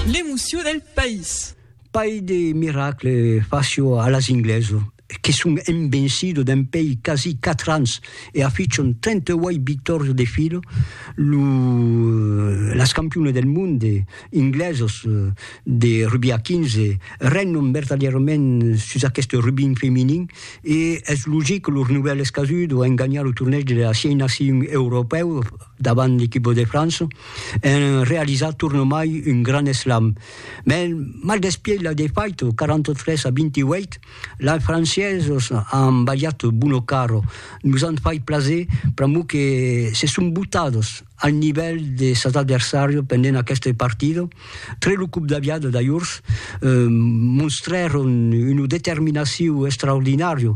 L'emoció del país. Pair de miracle facio a las ingleso que son envencido dempèi quasi quatre ans e afichon 38 victòrios de filo lo las campione del monde inglesos de rugbi a 15 regnon vertadièrament sus aqueste rugbin feminin e es logic que los novèls casud an ganhat lo tornèig de las sièis nacions europèus davant l'equipo de França, en realizar tornomai un gran eslam. Mès mal despièit la defaita, 43 a 28, lai franciesos an balhat Buono Caro, nos an fait plaser pr'amor que se son botados al nivèl de sas adversàrios pendent aquesta partida. Tre lo cop d'aviada d'ajorns, monstrèron una determinacion extraordinària,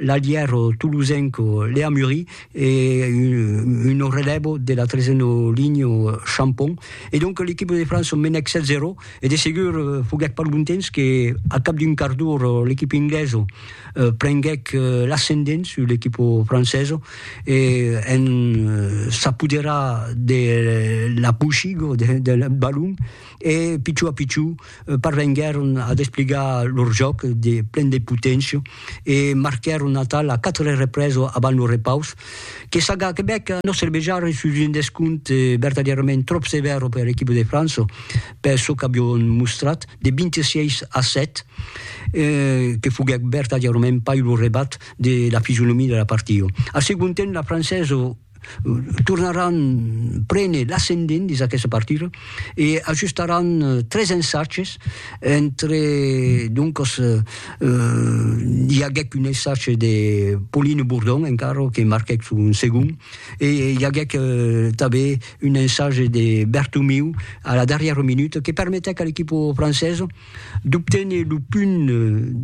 L'allièro tolosenco Léa Mury e un relevo de la tresena linha Champon. E donc l'equipa de França menèc 7-0 e de segur foguèc pas lontens que a cap d'un quart d'ora l'equipa inglesa prenguèc l'ascendent sus l'equipa francesa e en s'apoderar de la pochiga del balon e pichó a pichó parvenguèron a despligar lor jòc de plen de poténcia e marquèron atal la 4 represa avant lo repaus, que Saga Quebec no servejarà sus un descompte vertadièrament tròp sevèr per l'equipa de França per çò qu'avián mostrat, de 26 a 7, que foguèt vertadièrament pas lo rebat de la fisionomia de la partida. Al segond temps, la Francesa tornaràn prene l'ascendent dins aquesta partida e ajustaràn tres ensatges entre doncas i aguèc un ensatge de Pauline Bourdon encara que marquèc son segond e i aguèc tanben un ensatge de Bertomeu a la darrièra minuta que permetèc a l'equipa francesa d'obténer lo punt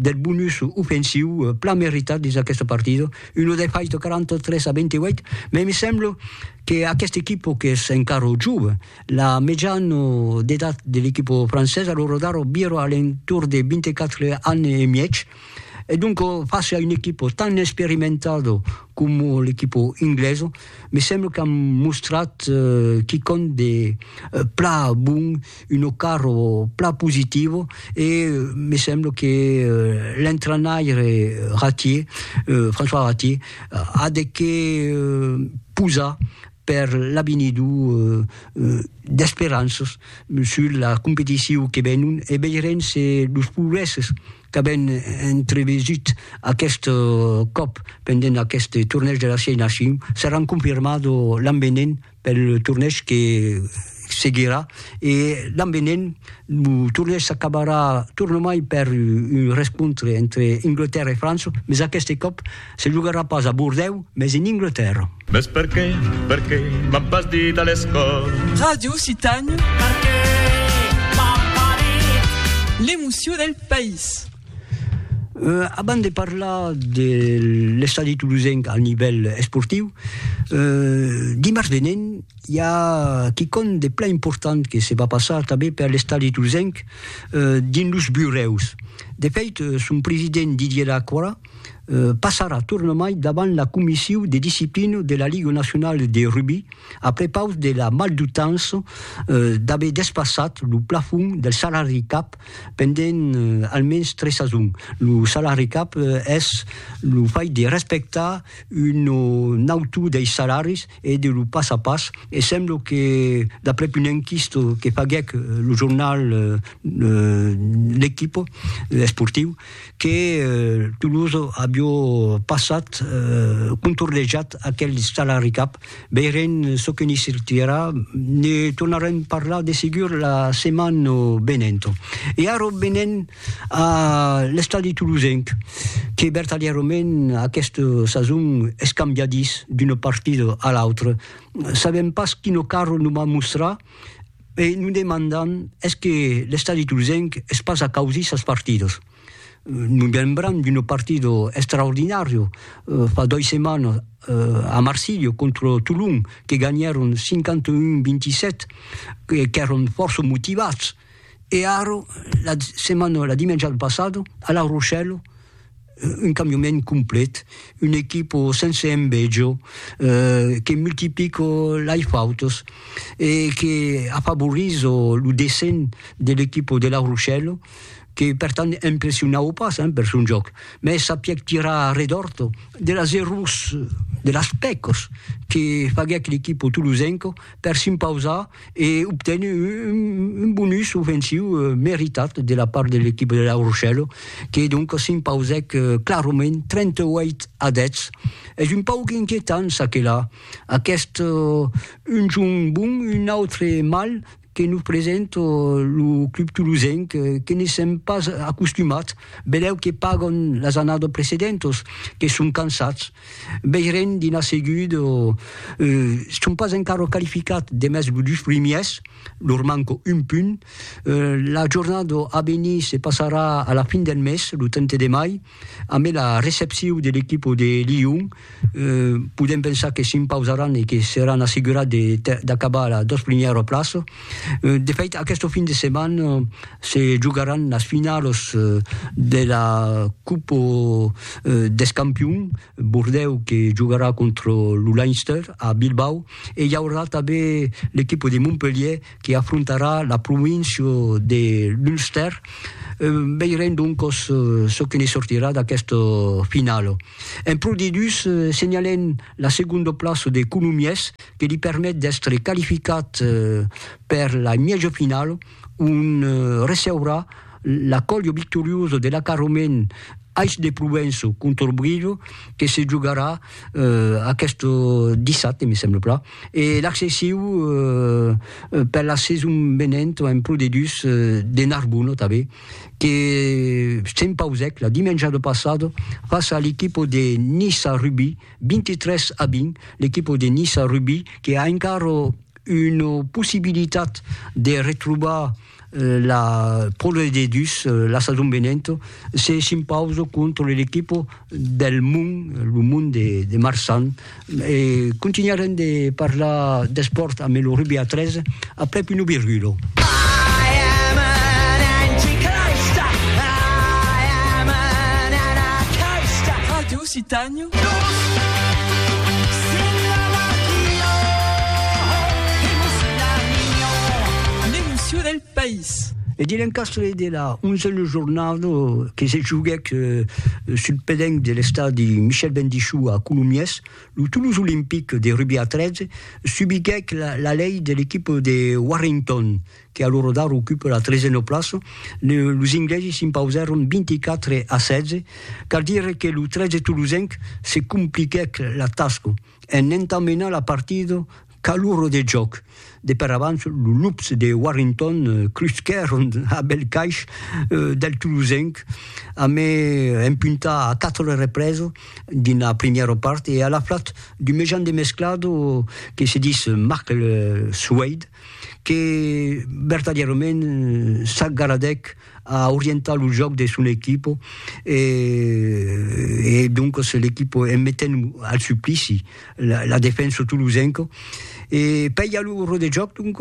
del bonus ofensiu plan meritat dins aquesta partida, una defaita 43 a 28, mai me sembla que aquesta equipa qu'es encara jove, la mejana d'edat de l'equipa francesa, lo radar vira a l'entorn de 24 ans e mièg, e donc face a una equipa tan experimentada coma l'equipa inglesa, me sembla qu'an mostrat quicòm de plan bon. uno carro plan positivo e me semblo que l'entrainaire Ratier, François Ratier, a de qué posar per l'avenido d'esperanças sus la competicion que venon e veirem se los progrèsses qu'avèm entrevesut aqueste còp pendent aqueste tornèig de la Siei Nacion seràn confirmados l'an venent. pel torneg que seguirà e l'an venent lo torneg s'acabarà tornomai per un rescontre entre Inglatèrra e França, mes aqueste còp se jogarà pas a Bordèu, mes en Inglatèrra. Mes perqué, perqué m'an pas dit a l'escòla. Ràdio Citània. Perqué m'an pas dit. L'emocion del país. Euh, abans de parlar de l'estadi tolosenc al nivèl esportiu, euh, dimars venent i a quicòm de plan important que se va passar tanben per l'estadi tolosenc, euh, dins los burèus. De fèit, son president Didier Lacroix, euh, passarà tornamai davant la comissiu de disciplina de la Liga Nacionala de Rugbi a prepaus de la maldutança, euh, d'aver despassat lo plafond del salari cap pendent almens tres sasons. Lo salari cap es lo fach de respectar un o nautu dei salaris e de lo pas a pas e sembla que d'aprèp un enquist que faguèc lo jornal L'Equipe esportiu que Toulouse aviá passat contornejat aquel salari cap Veirem çò que n'i sortirà, ne tornarem parlar de segur la setmana venenta. E ara venem a l'estadi tolosenc, que vertadièrament aquesta sason es cambiadís d'una partida a l'autra. Sabem pas quina cara nos va mostrar e nos demandam es que l'estadi tolosenc es pas acausís sas partidas. Nos lembram d'un partido extraordinario fa dois setmanas a Marsilha contra Tolon, que ganhèron 51-27, qu'èron fòrça motivats. E ara, la setmana, la dimènja passada, a La Rochelle, un cambiament complet, una equipa sense enveja, que multiplica lei fautas e que afavorís lo descens de l'equipa de La Rochelle. que per tant impressionaue pas hein, per son jòc, mès sapiec tirar a redòrt de las errors, de las pècas que faguec l'equipo tolosenco per s'impausar e obténer un bonus ofensiu meritat de la part de l'equipo de La Rochelle, que donc s'impausèc clarament 38 a 10. Es un pauc inquietant çaquelà, aqueste un jorn bon, un autre mal, que nos presente lo club tolosenc, que ne sèm pas acostumats, vedèu que pagan las annadas precedentas, que son cansats, veirem dinar seguit, son pas encara qualificats demest los dus primièrs, lor manca un punt, la jornada a venir se passarà a la fin del mes, lo 30 de mai, Amé la recepciu de l'equipo de Lyon, podem pensar que s'impausaràn e que seràn assegurats d'acabar a la dos primièra plaça. De fait, aqueste fin de setmana se jogaràn las finalas de la Copa dels Campions, Bordèu que jogarà contra lo Leinster a Bilbao e i aurà tanben l'equipo de Montpelhièr que afrontarà la província de l'Ulster. Veirem doncos çò que ne sortirà d'aquesta finala. En Pro D2 senhalem la segonda plaça de Colomiers que li permet d'èstre qualificat per la mièja finala ont receurà la còlha victoriosa de l'acarrament Ais de Provença contra Brilho que se jogarà aquest dissabte, me sembla plan, e l'accessiu per la saison venent en pro de dus de Narbona tanben que s'empausèc la dimenjada passada fàcia a l'equipa de Niça Rugby 23 a 20 l'equipa de Niça Rugby que a encara una possibilitat de retrobar la Pròle de Dus, la sason venenta, se s'impausa contra l'equipa del Mon, lo Mon de, de Marsan. E continuarem de parlar d'espòrt amb lo rugbi a 3 aprèp una virgula. Ràdio Occitània E de l'encastre de la onzena jornada que se joguèc sul pedenc de l'estadi Michel Bendichou a Colomiers, lo Toulouse Olympique de rugbi a 13 subiguèc la lei de l'equipa de Warrington, que a lo rodar ocupe la tresena plaça, los inglesi s'impausèron 24 a 16, cal dire que lo 13 tolosenc se compliquèc la tasca en entamenar la partida qu'a l'ora de jòc. De per abans, los lups de Warrington crusquèron a bèl caish del tolosenc a me empuntar a 4 represa dins la primièra part e a la flat d'un mejan demesclado que se dis Marc Soueyd que vertadièrament s'agaradèc a orientar lo jòc de son equipo e e doncas l'equipo en metent al suplici la la defensa tolosenca e pèia lo rò de jòc donc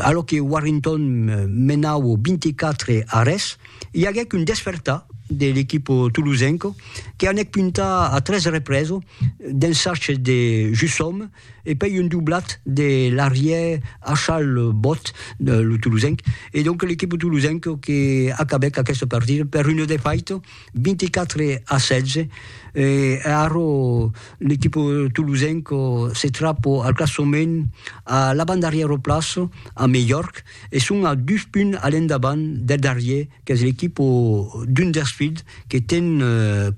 alò que Warrington menau 24 a res i aguèc un despertar de l'equipo tolosenca que anèc puntar a tres represa d'un sachet de Jusòme e pei un doblat de l'arrièr Achal Bot, lo tolosenc, e donc l'equipe tolosenc que acabèc aquesta partida per un defaite 24 a 16, e ara l'equipe tolosenc se trap al classement a l'avantdarrièra plaça amb Mejorc e son a dus punts a l'endavant del darrièr qu'es l'equipa d'un dels filhs que ten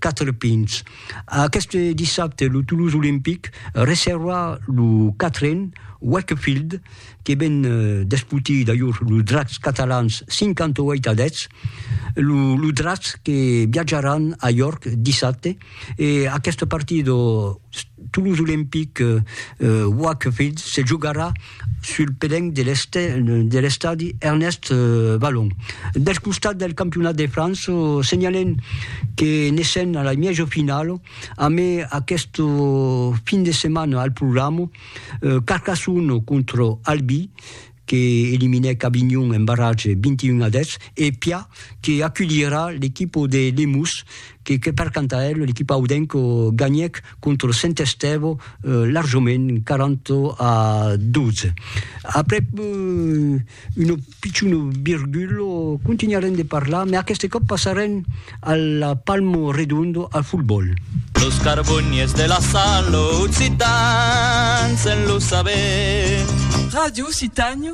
quatre pinhs. Aqueste dissabte lo Toulouse Olympic recebra lo quatren Wakefield que ven d'esputir d'ajor los Dracs catalans 58 a 10. Los Dracs que viatjaràn a York dissabte E aqueste partit o Toulouse Olympique Wakefield se jogarà sul pelenc de l'estadi Ernest Vallon. Del costat del campionat de França, senhalem que ne sèn a la mièja finala amé aqueste fin de setmana al programa Carcassonne contra Albi, que eliminèc Avignon en barratge 21 a 10, e Pia que aculhirà l'equipa de Lemús que que per canta el, l'equipa audenca ganhèc contra Saint Estève larjament 40 a 12. Aprèp una pichona virgula, continuarem de parlar, mai aqueste còp passarem A la palmo redondo al football. Los carboniers de la sal occitans en lo saber. Radio Occitània.